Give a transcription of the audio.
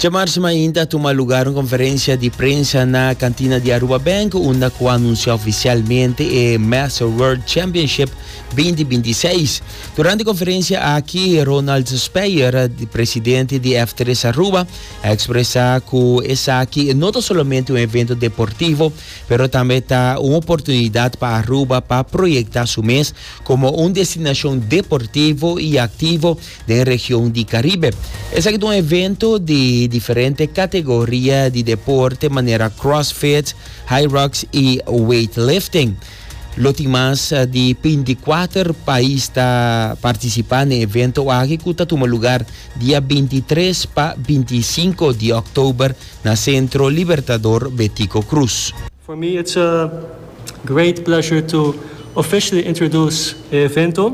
Djemar siman inti a tuma lugar un konferensia di prensa na kantina di Aruba Bank unda ku a anunsiá ofisialmente e Master World Championship binti binti seis. Durante konferensia aki Ronald Speyer, di presidente di F tres Aruba, a ekspresá ku esaki no ta solamente un evento deportivo pero tambe ta un oportunidat pa Aruba pa proyektá su mes komo un destinashon deportivo i aktivo den region di Caribe. Esaki ta un evento di diferente categoria di deporte manera crossfit, high rocks y weightlifting. Lo tin mas di 24 pais ta participa n'e evento aki cu ta tuma lugar dia 23 pa 25 di oktober na Centro Libertador Betico Cruz. For me it's a great pleasure to officially introduce e evento.